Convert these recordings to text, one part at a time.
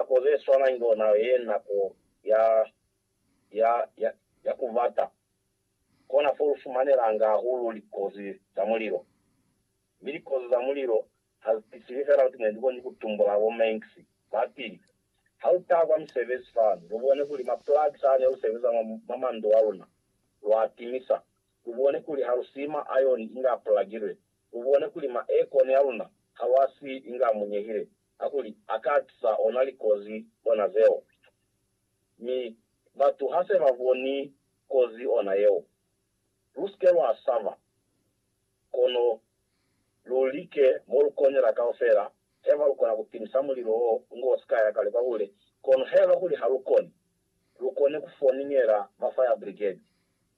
Nako ze swana inge ona ye nako ya, ya, ya, ya ku bata. Kona fo lu fumanelanga hahulu likozi za mulilo. Mi likozi za mulilo ha zi tisili fela kuti ne lu koni ku tumbula bo Manx ba pili. Ha lu taha kwa misebezi fani, lu bone kuli ma plugs a ne lu sebeza mwa, mwa mandu a luna, lwa a timisa. Lu bone kuli ha lu siyi ma ayoni inge a pulagilwe. Lu bone kuli ma aircon a luna ha lwa siyi inge a munyehile. kakuli a ka tisa ona likozi ona zeo. Mi batu ha se ba boni kozi ona yeo, lu si ke lwa saba, kono lu like mo lu konela kaufela heba lu kona ku timisa mulilo wo ngo si ka ya kale kwa hule, kono heba kuli ha lu koni, lu kone ku foningela ba fire brigade.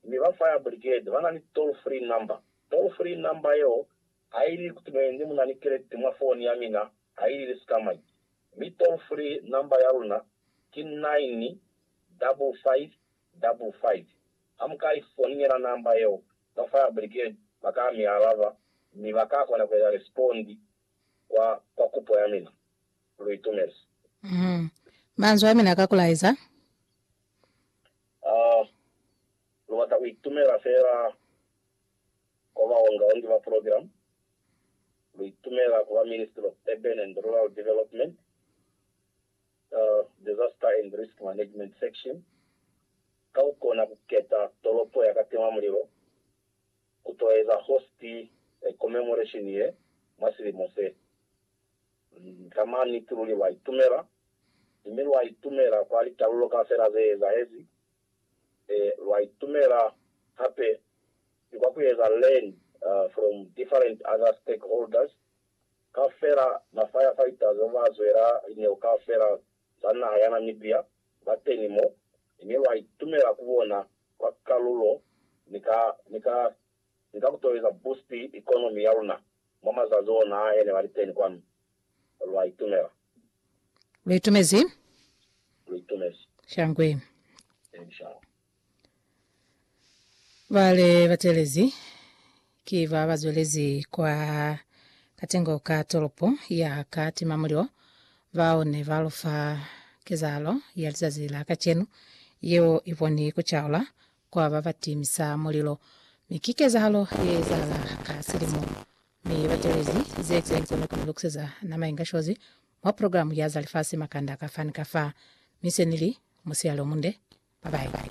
Mi ba fire brigade ba na ni toll free number, toll free number yeo Ha ili kutimuenzi muna ni kelekte mwa foni ya mina ha ili li sika mai. Mi toll free number ya luna ki 9 double 5 double 5. Ha mu ka i foniela number yeo, ba fire brigade ba ka mi alaba mi ba ka kona ku eza respond kwa kwa kupo ya mina. Lu itumezi. Uhum. Manzwi a mina ka ku laeza. Ah, lu bata ku itumela fela Ko Maungaoni ki ba Program, lu itumela ku ba Ministry of Urban and Rural Development, Disaster and Risk Management Section, ka ku kona ku keta tolopo ya ka tima mulilo ku to eza host ya commemoration ye mwa silimo se. Ka maniti luli lwa itumela, mi lwa itumela kwa litalulo kaufela ze ezahezi lwa itumela hape ni kwa kueza learn from different other stakeholders kaufela, ma firefighters ba zwela lineo kaufela za naha ya Namibia ba teni mo, mi lwa itumela ku bona kwa kalulo ni ka ni ka ni ka ku toeza boost economy ya luna mwa mazazi ona ahe ne ba li teni kwanu. Lwa itumela. Lu itumezi. Lu itumezi. Shangwe. Thank you. Bale batelezi ki ba ba zwelezi kwa katengo ka toropo ya ka timamulilo bao ne ba lufa kezahalo ya lizazi la kacenu yeo i boni ku caula kwa ba ba timisa mulilo, mi ki kezahalo ye ezahala ka silimo. Mi ba telezi ze ki nze ni ku ni lokuseza nama inga shozi mwa program ya za lifasi makanda ka fa ni ka fa, mi se ni li, Musiyale o munde, bye bye.